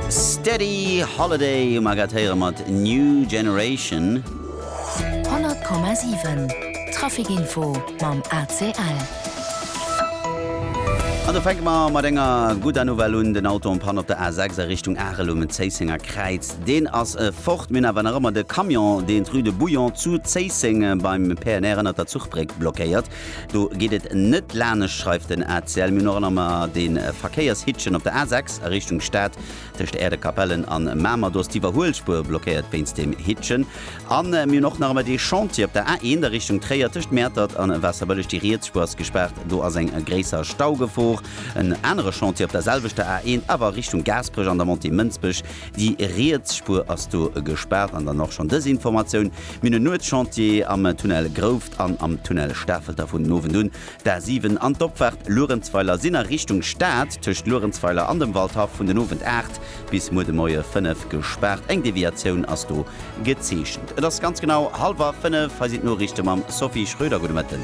Steady Holiday hu mer grad héiere mat New Generation. 100,7 Traficinfo mam ACL. An do fänke mer mat enger gudder Nouvelle un, Den Auto en Panne op der A6 a Richtung Arel um Zéissenger Kräiz, deen ass fort. Mir hunn awer nach ëmmer de Camion, deen d'Rue de Bouillon zu Zéisseng beim PNR ënnert der Zuchbréck blockéiert. Do geet et net lanescht, schreift den ACL, mir hunn och nach mar de Verkéiershittchen op der A6 a Richtung Stad tëscht Äerdekapellen an Mamer. Do ass d'Iwwerhuelspuer blockéiert wéinst dem Hittchen. A mir hunn och nach ëmmer dee Chantier op der A1 a Richtung Tréier tëscht Mäertert an Waasserbëlleg. Déi riets Spuer ass gespaart, do ass eng gréisser Staugefor. En anere Chantier op der selwechter A1, awer Richtung Gaasperech an der Montée Mënsbech. Déi riets Spuer ass do gespaart. An dann och schonn dës Informatioun, Mir hunn e Nuetschantier am Tunnel Grouv. an am Tunnel Stafelter vun den Owend un d'A7 an d'Opfahrt Luerenzweiler sinn a Richtung Stad tëscht Luerenzweiler an dem Waldhaff vun den Owend 8 bis muer de Moie 5 gespaart. Eng Deviatioun ass do gezeechent. Et ass ganz genau hallwer 5, hei sinn d'Noriichte mam Sophie Schröder. Gudde Mëtten.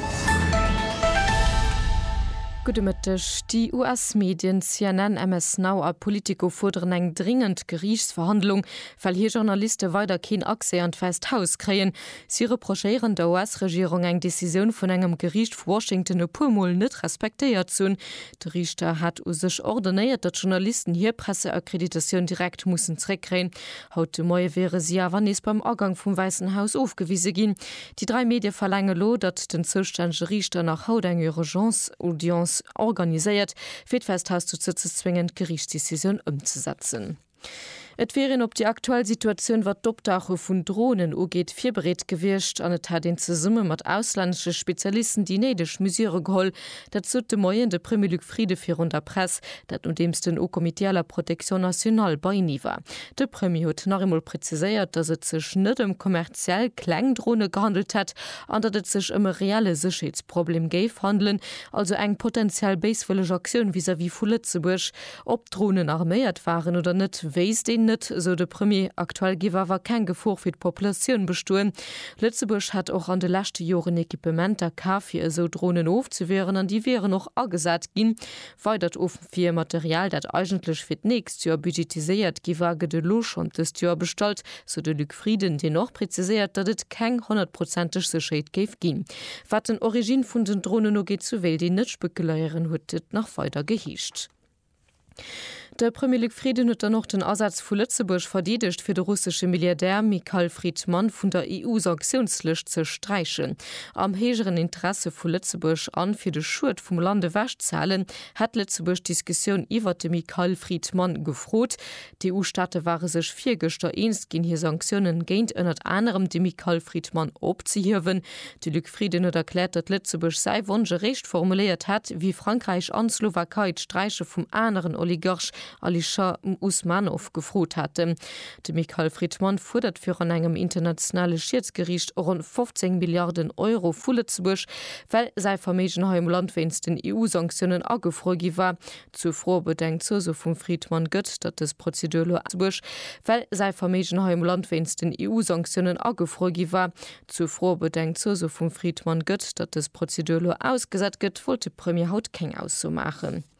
Gudde Mëtteg. Déi US-Medien CNN, MS Now a Politico fuerderen eng dringend Geriichtsverhandlung, well hir Journaliste weider keen Accès an d'Wäisst Haus kréien. Si reprochéieren der US-Regierung eng Decisioun vun engem Geriicht vu Washington e puer Mol net respektéiert ze hunn. De Riichter hat u sech ordonéiert, datt Journalisten hir Presseakkreditioun direkt mussen zeréckkréien. Haut de Moie wiere si awer nees beim Agang vum Wäissen Haus ofgewise ginn. Déi dräi Medie verlaange lo, datt den zoustännege Riichter nach haut eng Urgence-Audience organiséiert, fir d'Wässt Haus dozou ze zwéngen, d'Geriichtsdecisioun ëmzesetzen. Et wier een op déi aktuell Situatioun, wat d'Optauche vun Dronen ugeet, virbereet gewiescht an et hätt een zesumme mat auslännesche Spezialisten déi néideg Mesure geholl. Dat sot de Moien de Premier Luc Frieden virun der Press, dat nodeems den Haut Comité à la protection nationale beienee war. De Premier huet nach eemol preziséiert, datt et sech net ëm kommerziell kleng Drone gehandelt hätt an datt et sech ëm e reelle Sécherheetsproblem géif handelen, also eng potenziell béiswëlleg Aktioun vis-à-vis vu Lëtzebuerg. Ob d'Dronen arméiert waren oder net, wéisst een net, sou de Premier. Aktuell géif awer keng Gefor fir d'Populatioun bestoen. Lëtzebuerg hätt och an de leschte Joren Equipementer kaf, fir esou Dronen ofzewieren an déi wieren och agesat ginn. Weidert Ofwiermaterial, dat eigentlech fir d'nächst Joer budgetiséiert gi war, gëtt elo schonn dëst Joer bestallt. sou de Luc Frieden, deen och preziséiert, datt et keng honnertprozenteg Sécherheet géif ginn, wat den Origine vun den Dronen ugeet, sou wéilt een net spekuléieren, huet et nach weider geheescht. De Premier Luc Frieden huet dann och den Asaz vu Lëtzebuerg verdeedegt, fir de russesche Milliardär Mikhail Fridman vun der EU-Sanktiounslëscht ze sträichen. Am héijeren Interesse vu Lëtzebuerg an fir de Schued vum Land ewech ze halen, hätt Lëtzebuerg d'Diskussioun iwwert de Mikhail Fridman gefrot, D'EU-Staate ware sech virgëschter eens ginn hir Sanktiounen géint ënnert anerem de Michael Fridman opzehiewen. De Luc Frieden huet erkläert, datt Lëtzebuerg säi Wonsch eréischt formuléiert hätt, wéi Frankräich an d'Slowakei d'Sträiche vum aneren Oligarch Alisher Usmanov gefrot haten. De Michael Fridman fuerdert virun engem internationale Schiedsgeriicht ronn 15 Milliarden Euro vu Lëtzebuerg, well säi Verméigen hei am Land wéinst den EU-Sanktiounen agefruer gi war. Zur Fro, ob et eng Zuso vum Friedmann gëtt, datt dës Prozedur elo Lëtzebuerg, well säi Verméigen hei am Land wéinst den EU-Sanktiounen agefruer gi war, zur Fro, ob et eng Zuso vum Friedmann gëtt, datt dës Prozedur elo ausgesat gëtt, wollt de Premier haut keng Ausso maachen.